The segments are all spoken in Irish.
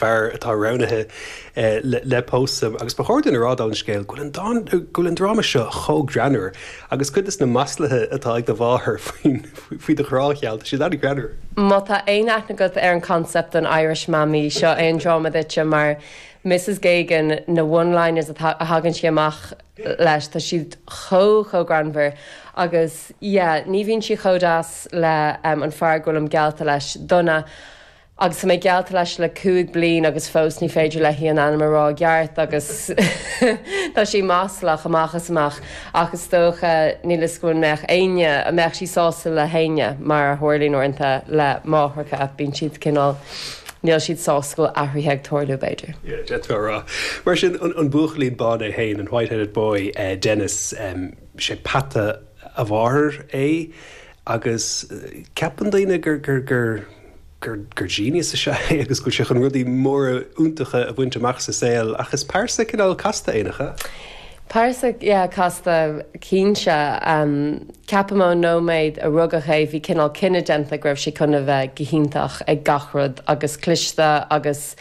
fear atá roghnaithe le pósadh agus ba chóir duinn a rá dála an scéil go bhfuil an dráma seo chomh greannmhar agus cuid des na maslaithe atá ag do mháthair faoi do ghrá gheal, tá siad an-ghreannmhar. Má tá aon aithne agat ar an concept an Irish Mammy, seo é an dráma duitse mar Mrs Geoghegan, na one liners atá, a thagann sí amach leis, tá siad chomh, chomh greannmhar agus yeah, ní bhíonn sí chomh deas le an fear go bhfuilim geallta leis, Donough. Agus tá mé geallta leis le cúig bliain agus fós ní féidir léi an ainm a rá i gceart agus tá sí maslach amach is amach ach is dócha, níl 'fhios agam an mbeadh éinne, an mbeadh sí sásta le héinne mar a tharlaíonn uaireanta le máithreacha, bíonn siad cineál, níl siad sásta go bhfuil athruithe ag tarlú b'fhéidir. Yeah, d'fhéadfá a rá. Mar sin, an buachaillín bán é féin, an white-headed boy, Denis, sé peata a mháthair é agus ceapann daoine gur, gur, gur. gur genius is ea é agus go bhfuil sé chun rudaí móra iontacha a bhaint amach sa saol, ach is pearsa cineál casta é, nach ea? Pearsa, yeah, casta, cinnte. Ceapaim ón nóiméad a rugadh é bhí cineál cinneadh déanta go raibh sé chun a bheith go hiontach ag gach rud agus cliste agus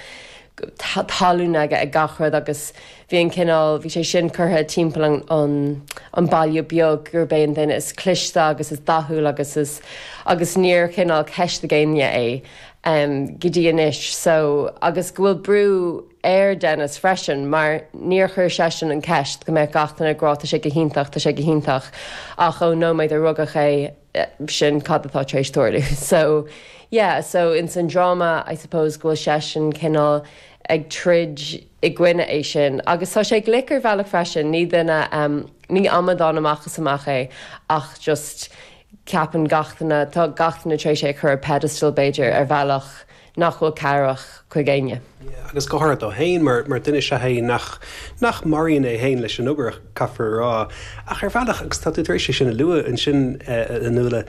tallann aige ag gach rud agus bhí an cineál, bhí sé sin curtha timpeall an baile beag gurb é an duine is cliste agus is dathúil agus is. agus níor chineál ceistigh éinne é go dtí anois so agus go bhfuil brú ar Denis freisin mar níor chuir seisean an ceist go mbeadh gach duine ag rá tá sé go hiontach, tá sé go hiontach ach ón nóiméad a rugadh é. sin cad atá tar éis tarlú. So, yeah, so ins an dráma I suppose go bhfuil seisean cineál ag troid i gcoinne é sin agus tá sé glic ar bhealach freisin, ní duine, ní amadán amach is amach é ach just ceapann gach duine, tá gach duine tar éis é a chur ar pedestal b'fhéidir ar bhealach nach bhfuil cabhrach chuig éinne. agus go háirithe dó féin, mar mar duine is ea é nach nach maraíonn é féin leis an obair, caithfear a rá. Ach ar bhealach, agus tá tú tar éis é sin a lua ansin, a Nuala,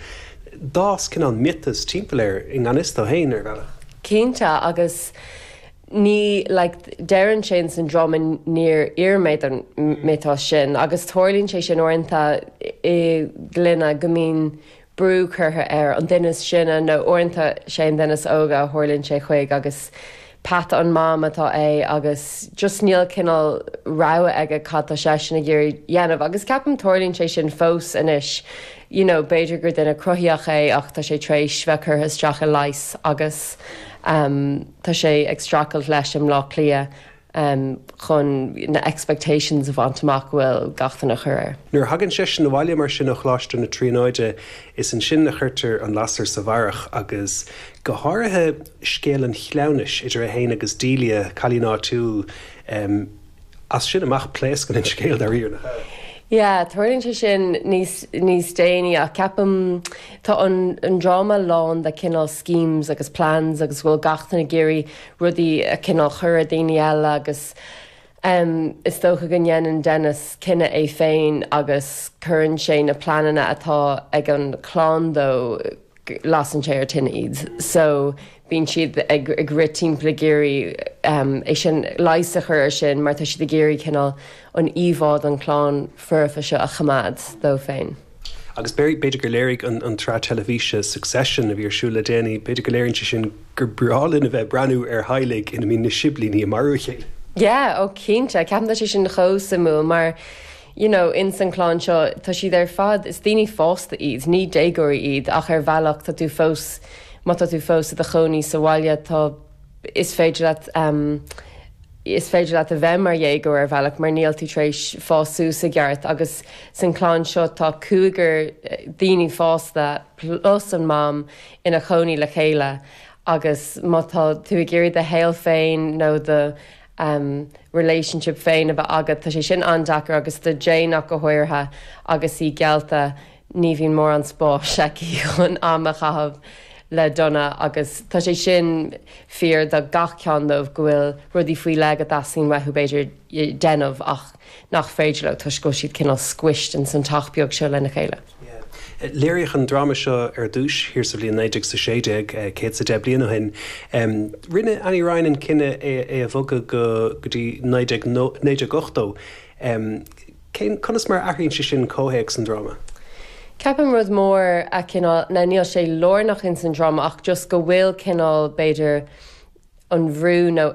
d'fhás cineál miotas timpeall air i ngan fhios dó féin, ar bhealach. Cinnte, agus ní, like, deireann sé in san dráma níor iarr mé ar an miotas sin, agus tarlaíonn sé sin uaireanta i gclanna go mbíonn brú curtha air, an duine is sine, nó uaireanta sé an duine is óige a tharlaíonn sé chuig agus peata an mam atá é agus just níl cineál rogha aige cad tá seisean ag iarraidh a dhéanamh agus ceapaim tarlaíonn sé sin fós anois you know b'fhéidir gur duine cruthaíoch é ach tá sé tar éis bheith curtha isteach i leighis agus tá sé ag streachailt leis i mBleá Cliath. amh chun na expectations a bhaint amach go bhfuil gach duine a chur air. Nuair a thagann seisean abhaile mar sin ó Choláiste na Tríonóide, is ansin a chuirtear an lasair sa bharrach, agus go háirithe scéal an chleamhnais idir é féin agus Delia, cailín áitiúil. As sin amach, pléascann an scéal, dáiríre, nach ea? Yeah, tarlaíonn sé sin níos, níos déanaí, ach ceapaim, tá an, an dráma lán de cineál schemes agus plans agus go bhfuil gach duine ag iarraidh rudaí a cineál chur ar daoine eile agus is dócha go ndéanann Denis cinneadh é féin agus cuireann sé na pleananna atá ag an chlann dó, lasann sé ar tine iad so bíonn siad ag rith timpeall ag iarraidh é sin, leigheas a chur ar sin mar tá siad ag iarraidh cineál an íomhá don chlann foirfe seo a choimeád dóibh féin. Agus b'fhéidir gur léirigh an tsraith teilifíse Succession a bhí ar siúl le déanaí, b'fhéidir go léiríonn sé sin gur breá linn a bheith ag breathnú ar theaghlaigh ina mbíonn na siblíní ag marú a chéile. Yeah, oh cinnte, ceapaim tá sé sin chomh suimiúil mar you know ins an clann seo tá siad ar fad, is daoine fásta iad, ní déagóirí iad ach ar bhealach tá tú fós má tá tú fós i do chónaí sa bhaile tá is féidir leat is féidir leat a bheith mar dhéagóir ar bhealach mar níl tú tar éis fás suas i gceart agus san clann seo tá cúigear daoine fásta plus an mam ina chónaí le chéile agus má tá tú ag iarraidh do shaol féin nó do relationship féin a bheith agat tá sé sin an-deacair agus do Jane ach go háirithe agus í geallta ní bhíonn mórán spáis aici chun am a chaitheamh le Donough agus tá sé sin fíor do gach ceann dóibh, go bhfuil rudaí faoi leith go dteastaíonn uathu, b'fhéidir, déanamh ach nach féidir leo toisc go bhfuil siad cineál squished ins an teach beag seo lena chéile. Léiríodh an dráma seo ar dtús thiar sa bhliain naoi déag is a sé déag, céad is a deich bliain ó shin. Rinne Annie Ryan an cinneadh é a bhogadh go dtí naoi déag ochtó. Cén, conas mar a athraíonn sé sin comhthéacs an dráma? Ceapaim rud mór a, cineál, now níl sé lárnach ins an dráma ach just go bhfuil cineál b'fhéidir an bhrú nó.